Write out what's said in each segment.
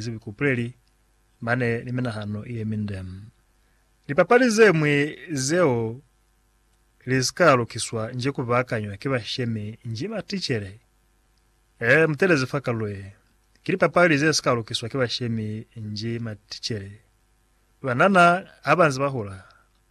zibi kupuleli mane ni minahano ye minde. Lipapali ze ñwi zeo li si ka lukiswa nji ku baakanywa ki bashemi nji maticele? Ee, mu teeleze fa kalulo ye. Ki lipapali ze si ka lukiswa ki bashemi nji maticele. Banana ha ba nze ba hula,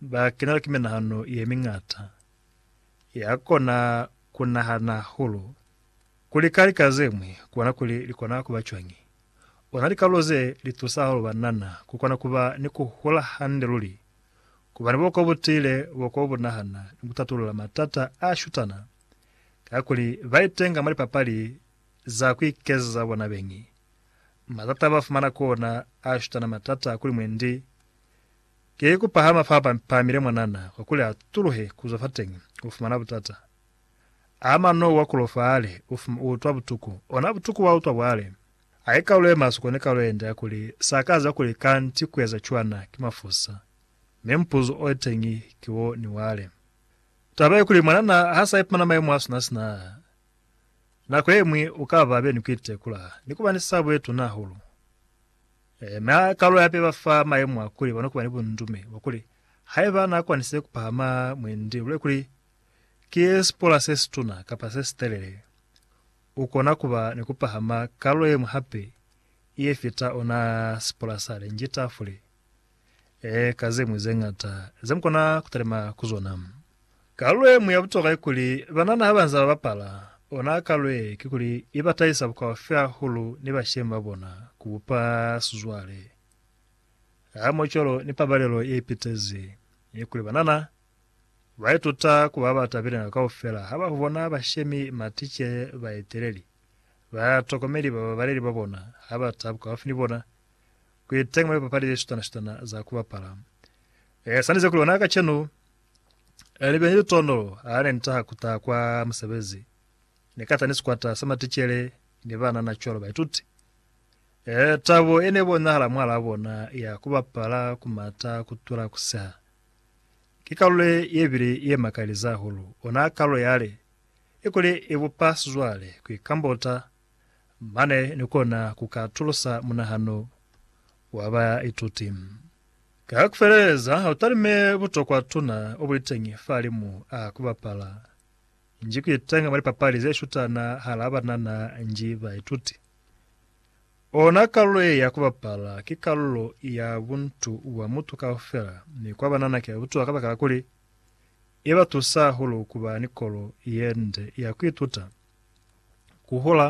ba kenelwa ki minahano ye miñata ya kona ku nahana hahulu. Ku lika lika ze ñwi ku bona kuli li kona ku ba cwañi. Ona likalulo ze li tusa hahulu banana ku kona ku ba ni ku hula hande luli, ku ba ni buhoko bu tiile, buhoko bu nahana, ni ku tatulula matata a shutana kakuli ba itenga mwa lipapali za ku ikezeza bona beñi. Matata ba fumana ku ona a shutana matata kuli mwendi ki ku pahama fa ba pamile mwanana, kakuli ha tuluhe ku zwa fateñi, u fumana butata. A mano wa kulo faale, u fuma u utwa butuku. Ona butuku wa utwa bwale. A ye kalu ye maswe kone kalu yende ya kuli, Sa ka za kuli kanti ku eza cwana, ki mafusa. Mi mupuzo o teñi ki wo ni wale. Taba ye kuli mwanana ha sa ipumana mayemo a sina sina a, nako ye ñwi u ka ba be ni ku itekula, ni kuba ni sabo ye tuna hahulu. Ee, mi ha kalu hape ba fa mayemo a kuli ba no kuba ni bundume bwa kuli, haiba na kwanisize ku pahama mwendi, luli kuli Ki sipola se situna kapa se sitelele. U kona kuba ni kupahama kalulo yeñwi hape ye fita ona sipola sa lenji tafule, ee, ka zeñwi zeñata ze mukona kutalima ku zona. Kalulo yeñwi ya butokwa kikuli banana habanze babapala ona kalulo ye, kikuli iba tahisa bukaufi hahulu ni bashemi babona, kubupa sizwale, hamoho cwalo ni pabalelo ye ipitezi yekuli banana Ba ituta ku ba ba tabile nako kaufela ha ba bona bashemi, maticele, baeteleli, batokomeli, bababaleli ba bona ha ba ta bukaufi ni bona. Ku iteñi mwa lipapali le sutana-sutana za ku bapala. E sanize kuli ona kacenu, li be ni litoondolo ha ne ni taha ku ta kwa musebezi. Ni ka ta ni sikwata sa maticele ni banana cwalo baituti. E, tabo ye ne bonahala mwahalaa bona ya ku bapala, ku mata, ku tula, ku seha, Ki kalulo ye bile ye makaleza hahulu, ona kalulo yale i kuli i bupa sizwale. Ku ikambota mane ni kona ku ka atulusa munahano wa baituti. Ka ku feleleza, ha u talime butokwa tuna o buliteñi fahalimu a ku bapala nji ku itenga mwa lipapali ze shutana hala banana nji baituti. Ona kalulo ye ya ku bapala ki kalulo ya buntu bwa mutu kaufela mi kwa banana ki ya butuwa kabakala kuli, i ba tusa hahulu ku ba ni kolo ye nde ya ku ituta, ku hula,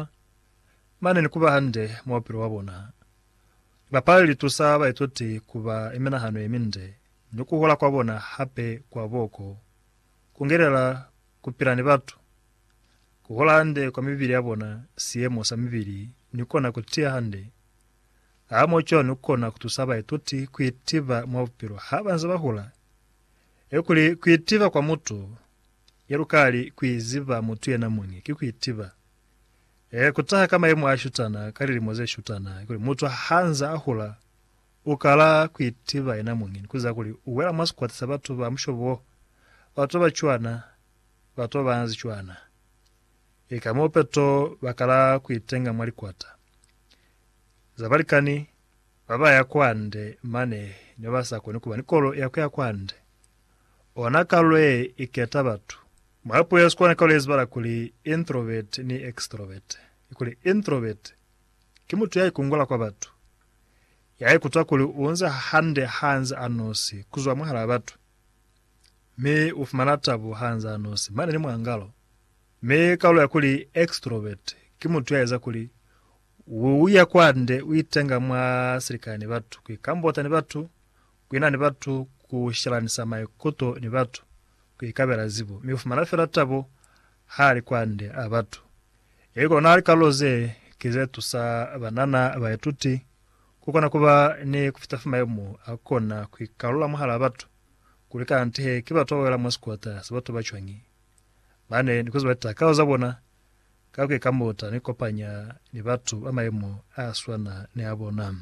mane ni ku ba hande mwa bupilo bwa bona. Libapali li tusa baituti ku ba ni minahano ye minde, ni ku hula kwa bona hape kwa boko ku ngelela ku pila ni batu ku hola hande kwa mibili ya bona, siyemo sa mibili ni kona ku tiya hande. A mo cwani u kona ku tusa baituti ku itiva mwa bupilo ha ba nze ba hula? E kuli, ku itiva kwa mutu, ya lukali ku iziba mutu yena muñi, ki ku itiva. E ku taha ka mayemo a shutana, ka lilimo ze shutana, kuli mutu ha nze a hula, u kala ku itiva yena muñi ni ku ziba kuli u wela mwa sikwata sa batu ba mushobo wo, batu ba ba cwana, bato banzi cwana. Ki ka mo peto ba kala ku itenga mwa likwata za balikani ba ba ya kwa nde mane ne ba sa koni ku ba ni kolo ya ku ya kwa nde. Ona kalo ye i keta batu. Mwa puo ya Sikuana kalo ye zibala kuli introvert ni extrovert. Kikuli introvert ki mutu ya ikungula kwa batu, ya ikutwa kuli u nze hande ha nze a nosi ku zwa mwahalaa batu. mi u fumana tabo ha nz'a nosi mane ni mwangalo. Mi kalulo ya kuli extrovert ki mutu ya eza kuli u ya kwande, u itenga mwa silikani ni batu, ku ikambota ni batu, ku ina ni batu, ku shelanisa maikuto ni batu, ku ikabela zibo. Mi u fumana fela tabo ha li kwande a batu. Ili kona kalulo ze ki ze tusa banana baituti Kukona kuba ni kufita fa mayemo akona kuikalula mwahalaa batu, kuli kanti he ki batu bawela mwa sikota sa batu bacwañi, mane nikueza litakalo zabona ka kuikamuta ni kukopanya ni batu ba mayemo aswana ni abona.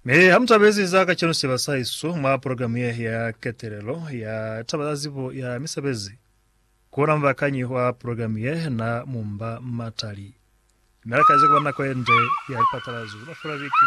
Mi hamutabezi za kacenu siba sahaesu mwa progilamu ye ya ketelelo ya taba za zibo ya misebezi, kuona mubakanyi wa progilamu ye na mumba matali. Mi alakazi kuba ni nako yende ya lipatalazo za mafelo a biki.